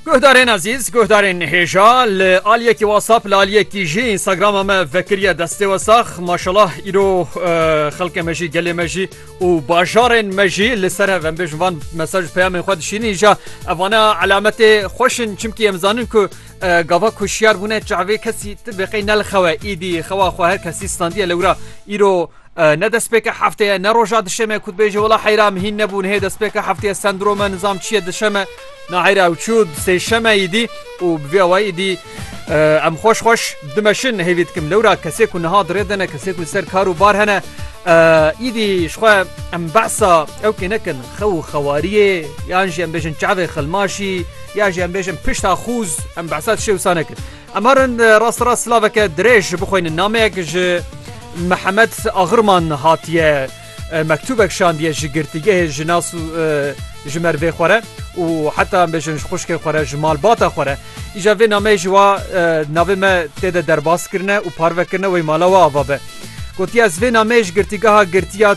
Guhdarên ezîz guhdarên hêja li aliyekî wasap li aliyekî jî Instagrama me vekiriye destê wesax maşalah îro eh, xelkê me jî gelê me jî û bajarên me jî li ser hev em bêjin van mesaj peyamên xwe dişînî îja evana elemetê xweşin çimkî em zanin ku eh, gava ku şiyar bûne çavê kesî ti beqey nelxewe îdî xewa xwe her kesî standiye lewra îro Ne destpêka heftê ye, ne roja dişê me ku dibêjî wela heyra em hîn nebûn hê destpêka heftê ye sendrome nizam çi ye dişem e na heyra ew çû sêşem e îdî û bi vê awayî îdî em xweş xweş dimeşin hêvî dikim lewra kesê ku niha dirê dene kesê ku li ser kar û bar hene îdî ji xwe em behsa ew kê nekin xew û xewariyê yan jî em bêjin çavê xilmaşî ya jî em bêjin pişta xûz em behsa tişê wisa nekin Em herin rasterast silaveke dirêj bixwînin nameyek ji Mihemed Axirman hatiye mektûbek şandiye ji girtîgehê ji nas û ji mervê xwe re û heta em bêjin ji xuşkê xwe re ji malbata xwe re. Îja vê nameyê ji wa navê me tê de derbas kirine û parve kirine wê mala we ava be. Gotiye ez vê nameyê ji girtîgeha girtiya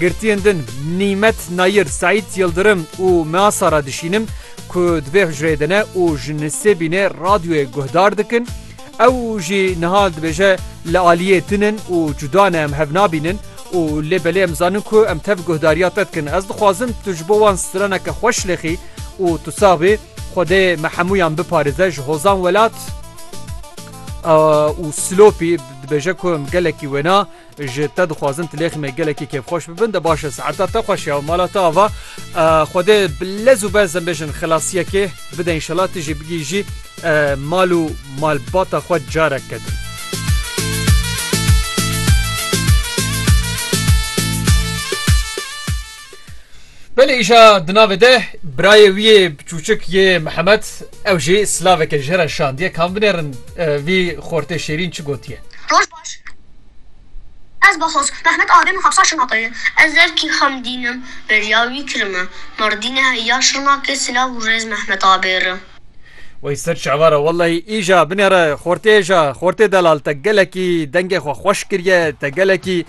Girtiyên din Nîmet Nayir, Seîd Yildirim û Mea Sara dişînin ku di vê hucreyê de ne û ji nisêbînê radyoyê guhdar dikin. Ew jî niha dibêje li aliyê din in û cuda ne em hev nabînin û lê belê em zanin ku em tev guhdariya te dikin. Ez dixwazim tu ji bo wan straneke xwe şilêxî û tu sax bî. Xwedê me hemûyan biparêze. Ji Hozan Welat û Silopî dibêje ku em gelekî wêna. Ji te dixwazim tilêxî me gelekî kêfxweş bibin de baş e saeta te xweş ya mala te ava Xwedê bi lez û bez em bêjin xelasiyekê bide înşela tu jî bigihîjî mal û malbata xwe careke din. Belê îşa di navê de birayê wî yê çûçik yê Mihemed ew jî silaveke ji here şandiye kam binêrin vî xortê şêrîn çi gotiye. Ez Baxoz Mehmet a Rêm û Hepsa Şirnexê ye. Ez zerkî Xemdîn im. Bêriya wî kirime. Mardînê heya Şirnexê silav û rêz Mehmet a bêri. Wey ser çava ra wellahî îja binêre xortê îja xortê delal te gelekî dengê xwe xweş kiriye te gelekî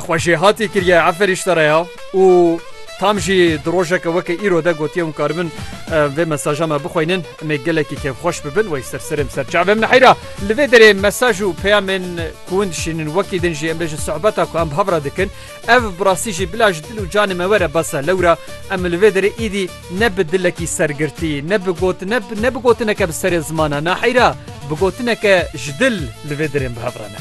Xwe jêhatî kiriye Efer Îştereya û tam jî di rojeke weke îro de gotiye hûn karibin vê mesaja me bixweynin em ê gelekî kêfxweş bibin wey ser serê em ser çav em neheyra li vê derê mesaj û peyamên ku hûn dişînin wekî din jî em bêjin sohbeta ku em hev re dikin ev bi rastî jî bila ji dil û canê me were besa lewra em li vê derê îdî ne bi dilekî sergirtî ne bi got ne ne bi gotineke bi serê zimana neheyra bi gotineke ji dil li vê derê em bi hev re ne